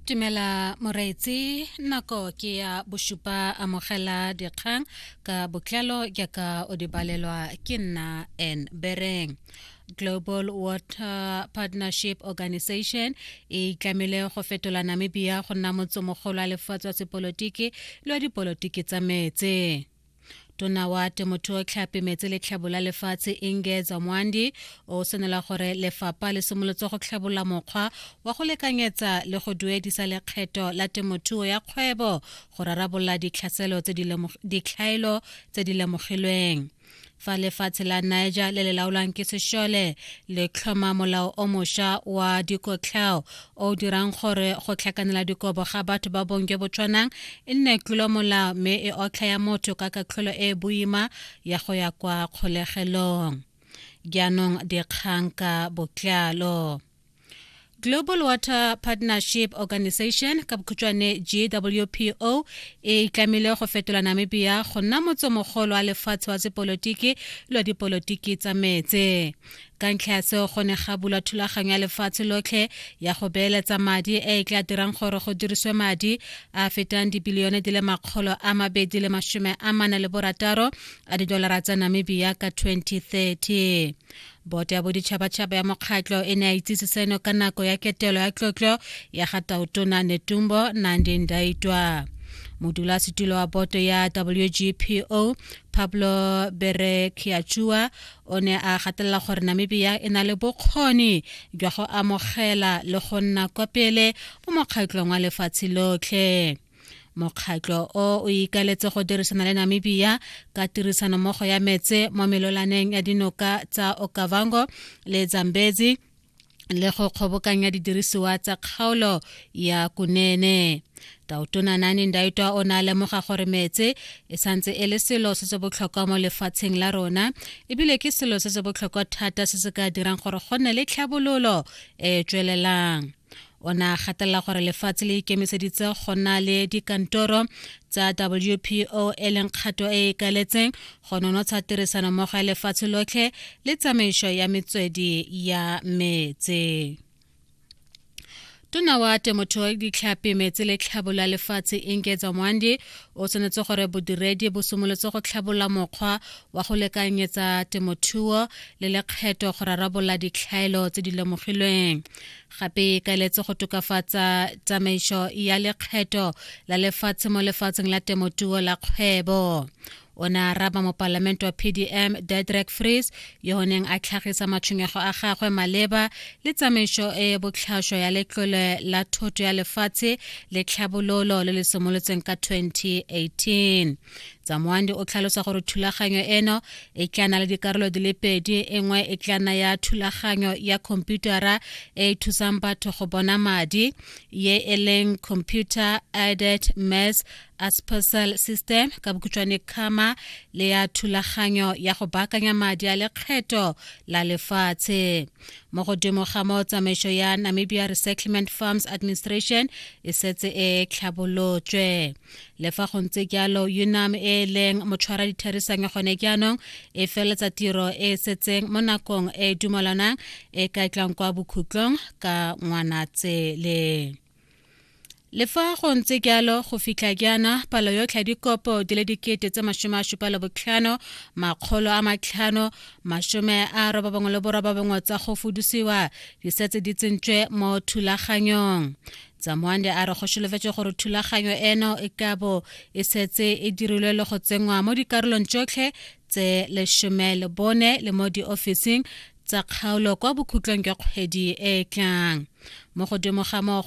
Tumela Moreetsi nako ke ya bosupa amogela dikgang ka botlalo jaaka o di balelwa ke nna en bereng global water partnership organization e itlamile go fetola namibia go nna motse mogolo wa lefatshe wa sepolotiki le wa dipolotiki tsa metse tona wa temothuo tlhapi metsi le tlhabo la lefatshe inge zamwandi o senela gore lefapha le simolotse go tlhabola mokgwa wa go lekanyetsa le go duedisa lekgetho la temothuo ya kgwebo go rarabolola ditlhaelo tse di lemogilweng fa lefatshe la niger le le laolwang ke sešole le tlhoma molao o mošwa wa dikotlhao o dirang gore go tlhakanela dikobo ga batho ba bong jo bo tshwanang e nne tlolo molao mme e otlha ya motho ka katlholo e e boima ya go ya kwa kgolegelong jaanong dikgang ka botlalo Global Water Partnership Organization ka bokhutšwane GWPO e tlamile go fetola Namibia go nna motsomogolo wa lefatshe wa sepolotiki lwa dipolotiki tsa metse ka ntlha ya seo go ne ga bulwa thulaganyo ya lefatshe lotlhe ya go beeletsa madi e e tla dirang gore go diriswe madi a fetang dibilione di le makgolo a mabedi le masome a mane le borataro a didolara tsa namibia ka 2030 Boto ya Boditšhabatšhaba ya Mokgatlo e ne ya itsise seno ka nako ya ketelo ya tlotlo ya ga Tautona Netumbo Nandi Ndaitwa. Modulasetulo wa boto ya WGPO Pablo Berekiachua o ne a gatelela gore Namibia e na le bokgoni jwa go amogela le go nna kwa pele mo mokgatlong wa lefatshe lotlhe. mokgatlho o o ikaletse go dirisana le namibia ka tirisanommogo ya metse mo melolaneng ya dinoka tsa okavango le zambezi le go kgobokanya didirisiwa tsa kgaolo ya kunene tautona nane ndaitwa o ne a lemoga gore metse e santse e le selo se se botlhokwa mo lefatsheng la rona ebile ke selo se se botlhokwa thata se se ka dirang gore go nne le tlhabololo e e tswelelang o ne a gatelela gore lefatshe le ikemiseditse go nna le dikantoro tsa wpo e leng kgato e e ikaletseng go nonotsha tirisano mmogo ya lefatshe lotlhe le tsamaiso ya metswedi ya metse tona wa temothuo ya ditlhapi metsi le tlhabolola lefatshe inketsa mwandi o tshwanetse gore bodiredi bo simolotse go tlhabolola mokgwa wa go lekanyetsa temothuo le lekgetho go rarabolola ditlhaelo tse di lemogilweng gape e kaeletse go tokafatsa tsamaiso ya lekgetho la lefatshe mo lefatsheng la temotuo la kgwebo o ne a raba mopalamente wa pdm dedrek frees yo o neng a tlhagisa matshwenyego a gagwe maleba le tsamaiso e e botlhaswa ya letlole la thoto ya lefatshe le tlhabololo le le simolotseng ka 2018 tsamoandi o tlhalosa gore thulaganyo eno e tla na le dikarolo di le pedi e nngwe e tla na ya thulaganyo ya khomputara e e thusang batho go bona madi ye e leng computer aided mass aspasal system ka bokhutshwane kgama le ya thulaganyo ya go baakanya madi a lekgetho la lefatshe mo godimo ga mo tsamaiso ya namibia resettlement farms administration e setse e tlhabolotswe le fa go ntse jalo unam e e leng motshwara ditherisang gone jaanong e feletsa tiro e e setseng mo nakong e e dumalanang e ka tlang kwa bokhutlong ka ngwanatsele le fa go ntse jalo go fitlha jaana palo yotlhe ya dikopo di le dikete tse masome a supa le botlhano makgolo a matlhano masome a robabongwe le borobabongwe tsa go fudusiwa di setse di tsentswe mo thulaganyong tsamwande a re go solofetse gore thulaganyo eno e ka bo e setse e dirilwe le go tsenngwa mo dikarolong tsotlhe tse lesome le bone le mo diofising tsa kgaolo kwa bokhutlong jwa kgwedi e e tlang mo godimo ga moo